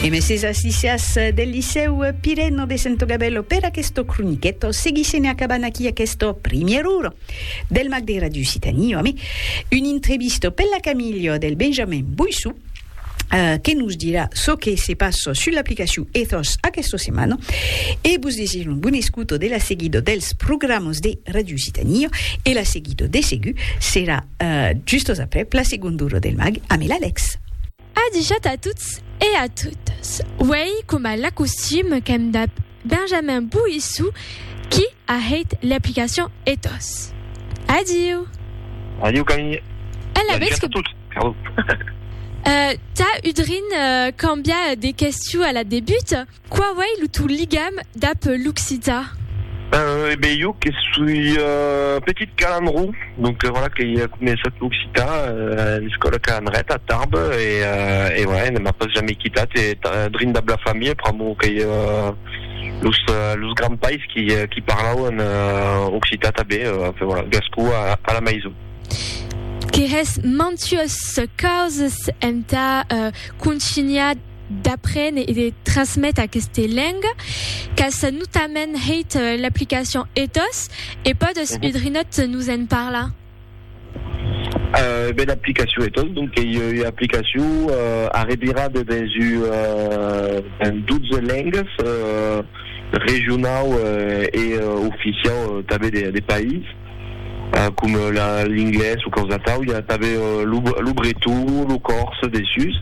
E meses as licias del Licèu Pireno de Sento Gabello per aquesto croniqueto. Seguissem e acabant aquí aquesto primièr uro del Mac de Radio Occitanie ame un intrevisto per la Camilio del Benjamin Boissou Eh, que nos dirà çò que se passa sul l'aplicacion Ethos aquesta setmana e vos desir un bon escuto de la seguida dels programas de Radio Occitania e la seguida de segur serà Uh, justos après, Placi Gunduro del Mag a Mil Alex. Adichat a tots e a totas. Uèi, coma l'acostum, qu'èm dab Benjamin Bouissou, qui a hèit l'aplicacion Ethos. Adiu! Adiu, Camille! Ela vètz que... Adiu a tots! Tà, Udrin, cambia de questiu a la debut. Qu'a uèi lo tau ligam dab l'occitan? Eh ben, jo que soi petit calandró, donc voilà que i a començat l'occitan a l'escòla calandreta a Tarbes e voilà, e ne m'a pas jamai quitat e drin dab la familha pr'amor que i a los grands pais qui parlauan occitan tanben, enfin voilà, gascon a la maison. Que hès mantuós causas entà contunhar. d'aprene e de trasmete aqueste lenga qu'as notament hèit l'aplicacion ethos e pòdes udrinòt nos en parlar? Ben l'aplicacion ethos donc qu'ei ua aplicacion arrevirada dens ua dens 12 lengas regionau e oficiau tanben de país com l'inglés o causatau i a tanben lo breton, lo còrse dessús.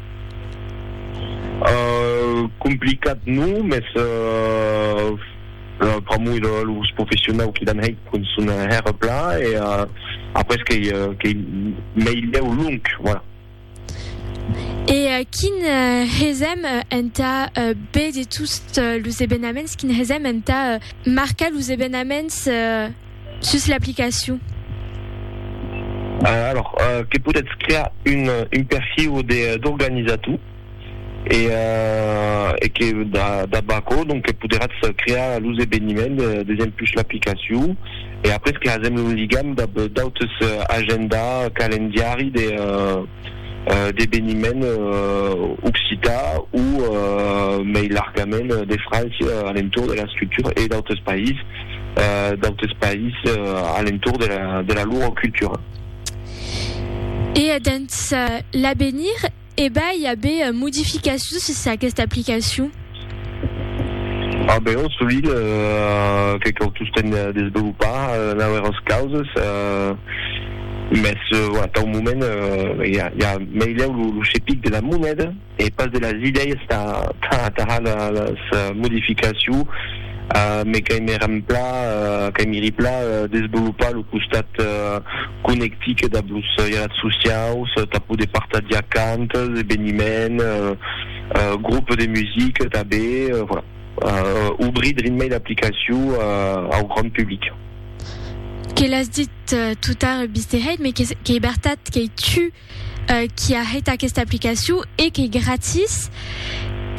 Complicat non, mès pr'amor de los professionau qui l'an hèit cun son hèrre pla e après qu'ei meilhèu long, voilà. E quin hesèm entà be de tost los ebenaments, quin hesèm entà marcar los ebenaments? Sus l'aplicacion. Alors, que podètz crear un, un perfiu de, d'organizator, e, e que da, dab aquò, donc, que poderatz crear los eveniments desempus l'aplicacion, e après que hasèm lo ligam dab d'autes agenda, calendiari de, d'eveniments occità o, mei largament, de França, alentour de la structura e d'autres païses. d'autes país a l'entorn de la lor cultura. E dens l'avenir, eba i a be modificacions sus aquesta aplicacion? A be, ò solid, que cau tostemp desvelopar nauèras causas, mès atau moment i a meilhau lo chepic de la moneda, E pas de las idèias tà atajar las modificaciu, mes qu'ai me remplà, qu'ai me riplà desvolopar lo costat conectic dab los ialats sociaus tà poder partajar cantes, eveniment, grup de music tabé, voilà, obrir drin mei l'aplicaciu au grand public. Que l'as dit totard, Bisteheit, mes qu'ei bertat qu'ei tu qui a hèt aquesta aplicacion e qu'ei gratis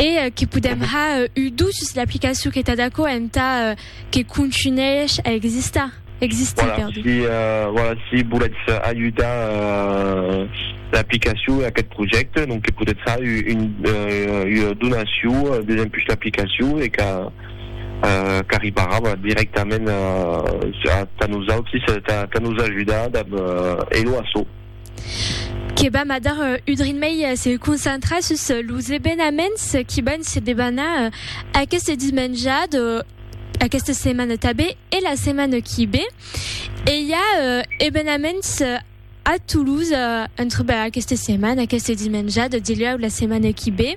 e que podèm ha un dut sus l'aplicacion qu'ei tad aquò entà que contunhèish a existar. Voilà, si voilà si volètz ajudar l'aplicacion e aquest projècte donc que podètz ha una donacion desempuish l'aplicacion e qu'arribarà dirèctament tà nosautris tà nos ajudar dab Elo Asso. que vam a dar un drin mei se concentrar sus los evenaments qui van se debanar aqueste dismenjat, aquesta setmana tabé e la setmana qui bé. E i a evenaments a Toulouse entre aquesta setmana, aqueste dismenjat, dilhèu la setmana qui bé.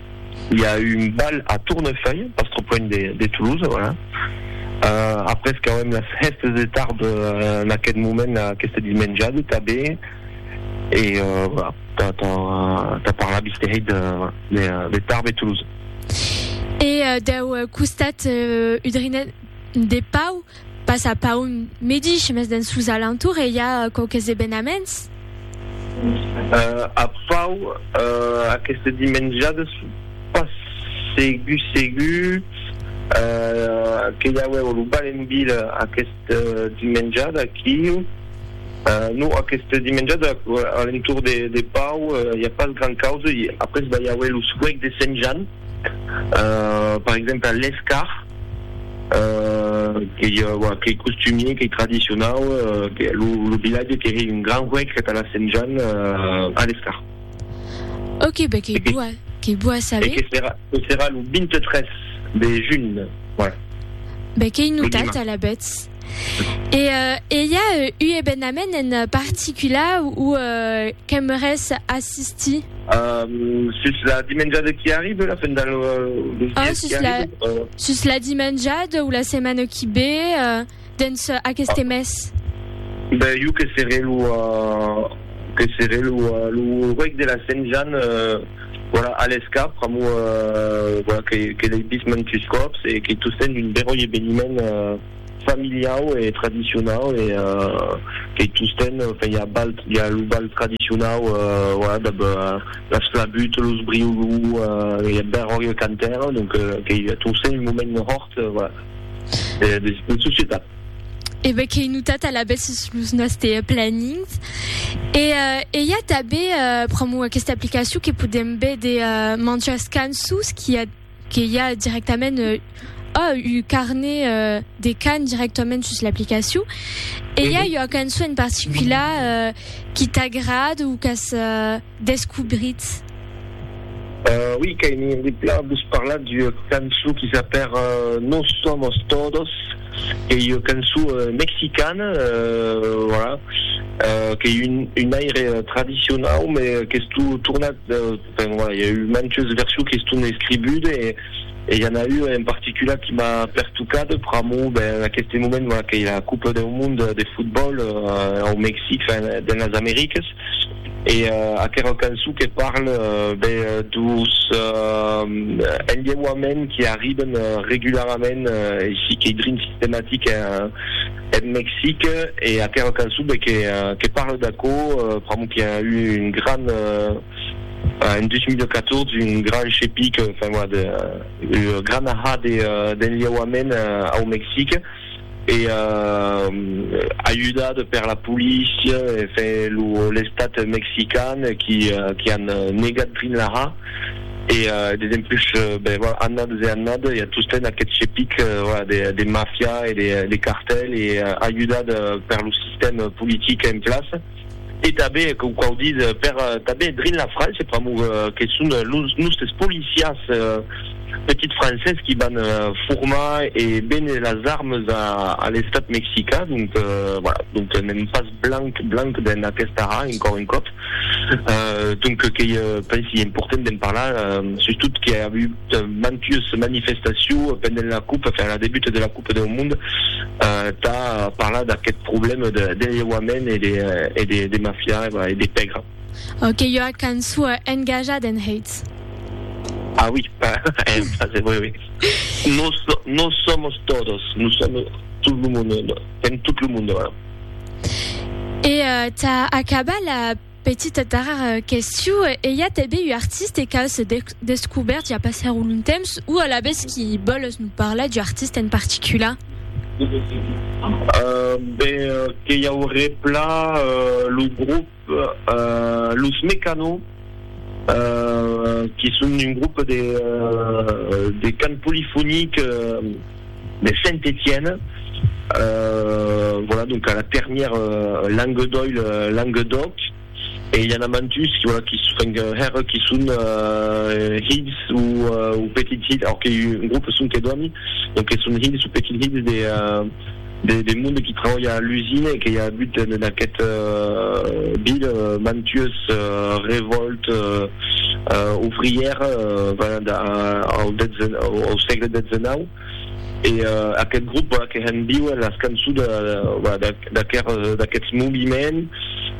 I a eu un bal a Tournefeuille, pas trop loin de Toulouse, voilà. Euh, après qu'auem las hèstes de tard en aquest moment-là, aquesta dismenjada tanben, e euh, voilà, tà, tà, tà parlar bisterei de, de, de Tarbes e Toulouse. E dau costat udrinenc de Pau, Pas a Paun medish, mes dens sos alentours e i a quauques evenaments. A Pau, aqueste dimenjades, pas segur segur que i auèvo lo bal en vila aqueste dimenjade aquiu. Non, aqueste dimenjade a l'entorn de Pau i a pas gran causa. Après va i auer lo suec de Sent Jan. per exemple l'escar qu'ei qu'ei costumier qu'ei tradicionau lo vilatge qu'ei un gran huec que tala sent Jan a l'escar ok be qu'ei boa qu'ei boa saber que serà que serà lo 23 de junh voilà be qu'ei notat alavetz E e i a u ebenament en particula ou qu'aimeres assistir? Sus la dimenjada qui arribe, la fin del mes qui arribe? Sus la dimenjada ou la setmana qui be dens aqueste mes? Ben jo que seré lo que seré lo ruec de la Sent Jan. Voilà, alesca, pr'amor voilà que que l'ei vist mantus còps e que tu sent un beròi eveniment familiau e tradicionau e que tu sent enfin i a bal i a lo bal tradicionau voilà dab las flabuts, los briolou e eth beròi e cantaire donc que tu sent un moment hòrt voilà de societat. E ben qu'ei notat alavetz sus los nòste planings. E i a tanben pr'amor aquesta aplicacion que podèm véder mantjas cançons qu'i a que i a dirèctament oh un carnet de cant dirèctament sus l'aplicacion. E i a ua cançon en particular qui t'agrad o qu'as descobritz? Ui, qu'ai envie de plan vos parlar d'ua cançon qui s'apèra Nos somos todos, qu'ei ua cançon mexicana, voilà, qu'ei un aire tradicionau, me qu'estó tornat, enfin voilà, i a eu mantes versions que estón escribudes e i a n'a ua en particular qui m'a pertocat pr'amor, ben, en aqueste moment, voilà, qu'ei la Copa deu Monde de Fotbòl au Mexic, enfin, dens las Americas. E aquerò cançon que parle be dos enlheuaments qui arriben regularament e si qu'ei drin sistematic en Mexic e aquerò cançon be que parle d'aquò pr'amor qui a eu un gran en 2014 un gran chepic enfin voilà de gran ahat d'enlheuaments au Mexic. e ajudat per la polícia e l'estat mexican qui an negat Greenlaha e dempús annadas e annadas i a tostemps aqueth chepic de mafia e de cartèl e ajudat per lo sistèma politic en plaça. e tanben que qu'a audit per tanben drin la França pr'amor que son los nustes policiers petits francés qui van formar e béner las armes a l'estat mexicain donc voilà donc n'èm pas blanc blanc d'en aquesta ha encor un còp donc qu'ei pensi important d'en parlar sustot que a agut mantues manifestacions pendent la cup enfin la debut de la cup Còp deu Mond tà parlar d'aqueth problème d'enlheuament e de mafia e de pègra. Qu'ei ua cançon engajada en hèits. Ah oui, en francés, oui, oui. Nos, nos somos todos, nous sommes tout le monde, en tot lo monde, voilà. E tà acabar la. Petita darrèra question, e i a tanben un artiste qu'a se descobèrt ja pas hèr o lontemps, o alavetz qui vòles nos parlar d'un artiste en particular? Ben, que i auré pla lo groupe Los Mecano, qui son un groupe de cant polifonic, de Saint-Étienne, voilà donc a la termièr langue d'oil langue d'oc, e i a n'a mantus voilà qui enfin hèr qui son hilhs ou petits hilhs, or que un groupe son que dòmi, donc que son hilhs ou petits hilhs de de monde qui trabalha a l'usine e que i a agut en aquest vil mantues revòltes ouvrières pendent au sègle xix e aquest grop que hèn viu en las cançons d'aquests moviments.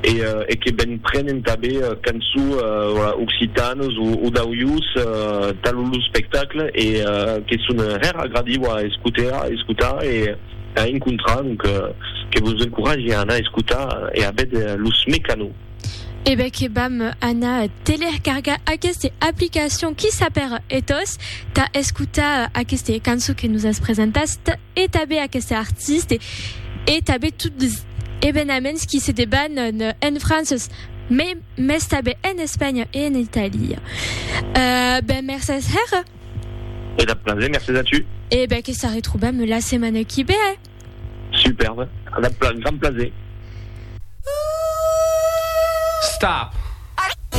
e que ben prenen tanben cançons occitanes o d'aujós talo lo spectacle e que son hèr agradiu a escotar e a encontrar donc que vos encoratge a anar escotar e a véder los Mecanos. E ben que vam anar telercargar aqueste aplicacion qui sap per e tos tà escotar aqueste cançon que nos as presentat. e tanben aqueste artiste e tanben tot les evenaments qui se deban en Frances mai mès tanben en Espanha e en Italia. Ben mercés hèra. E dab plaser, mercés a tu. E ben que s'arretrobam la setmana qui ve. Superbe, dab grand plaser. Stop!